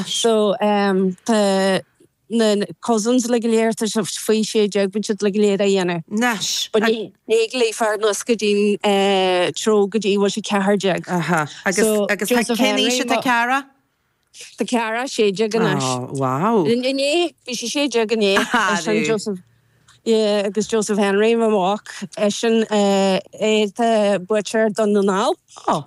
So, tá na cousins uilig go léir, tá siad faoi sé deag, bíonn siad uilig go léir a' dhéanamh Anois, but ní, ní ag léamh fear na nós go dtí an treabhadh go dtí go bhfuil sé ceathair déag. Aha. Agus, agus tá, cén aois atá Ciara? Tá Ciara sé déag anois. Oh, wow. Inné, bhí sí sé déag inné. Arú. Eisean Joseph, yeah, agus Joseph Henry, mo mhac, eisean, eh, tá buaiteoir Dhún na nGall. Oh.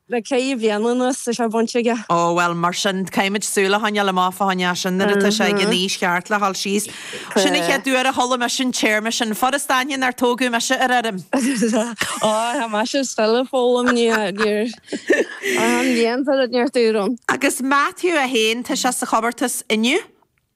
le ceithre bhliana anuas tá sé bainte aige. Ó, bhuel, mar sin, caithfimid súil a choinneáil amach fá choinne eisean nuair atá sé ag an aois cheart le dhul síos. Sin an chéad uair a chuala mise an téarma sin, Foras Daingean, nár tógadh mise ar fheirm! Ó, tá mise is Philip ag foghlaim níor, an bhliain seo, níor tuairim. Agus Matthew é féin, tá sé sa chomórtas inniu?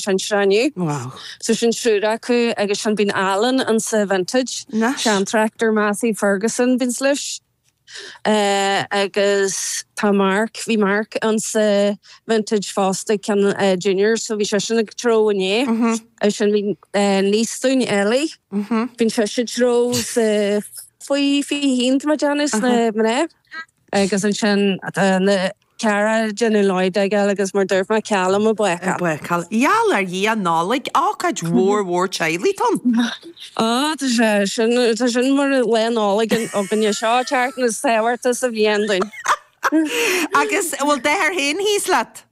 sean sreinge. Wow. So sin triúr acu agus ansin bíonn Alan ansa Vintage. Nice. Sean tractor Massey Ferguson a bíonns leis. Agus tá Mark, bhí Mark ansa Vintage fosta ag ceann Juniors so bhí seisean ag treabhadh inné. Agus ansin bíonn niece dúinn Ellie. Bíonn sise ag treabhadh sa faoi fiche haon tá mé ag déanamh sna mná. Agus ansin tá Ciara de na leoid ag eile agus mar a dúirt mé ceal liom a bhfeiceáil. bhfeiceáil. Gheall ar Dhia Nollaig, ócáid mhór mhór teaghlaigh ann. Ó, tá sé sin, tá sin mar Lá Nollag againne. Seo an tseachtain is tábhachtaí sa bhliain dúinn. Agus bhfuil d'fhear féin thíos leat?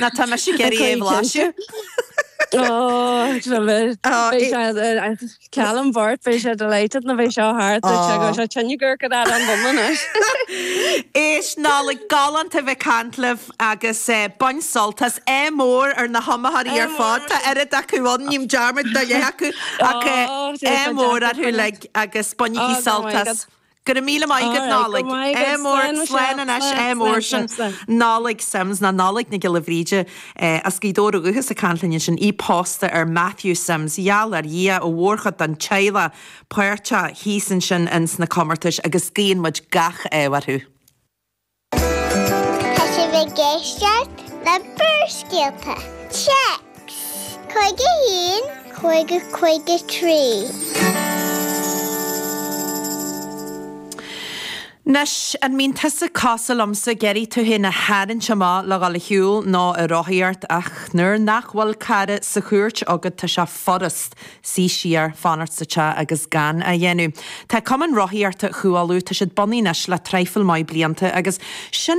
Ná tá mise ag iarraidh é a bhlaiseadh. Ó, beidh sé ag cealann Bhart, beidh sé delighted nuair a bheidh seo thart duit go bhfuil sé tine gur go dtá an bun anois. Éist, a Nollaig, galánta a bheith ag caint libh agus bain sult as. Ádh mór ar na hiomaitheoirí ar fad, tá oiread acu ann, ním dearmad de leath acu ach ádh mór orthu uilig agus bainigí sult as. Go raibh míle maith agat, Alright, a Nollaig. maith agat. Ádh mór Slán leis Slán sin, anois, slán, ádh mór slán, slán, sin, slán. Nollaig Simms, nó Nollaig Nic Giolla Bhríde, eh, as Gaoth Dobhair ó dhúchas, ag caint linn ansin. Í pósta ar Matthew Simms. Gheall ar Dhia an mhórchuid den teaghlach páirteach thíos ansin ins na comórtais agus guíonn muid gach ádh orthu. Tá sibh ag éisteacht le Barrscéalta, Téacs, 51, 50, 53. Anois, an mbíonn tusa cosúil liomsa, ag iarraidh tú féin a tharraingt amach le dhul a shiúl, nó a rothaíocht, ach nuair nach bhfuil cara sa chúirt agat tá sé furast. Suí siar, fanacht sa teach agus gan a dhéanamh. Tá Cumann Rothaíochta Chú Uladh, tá siad bunaithe anois le traidhfil maith blianta agus sin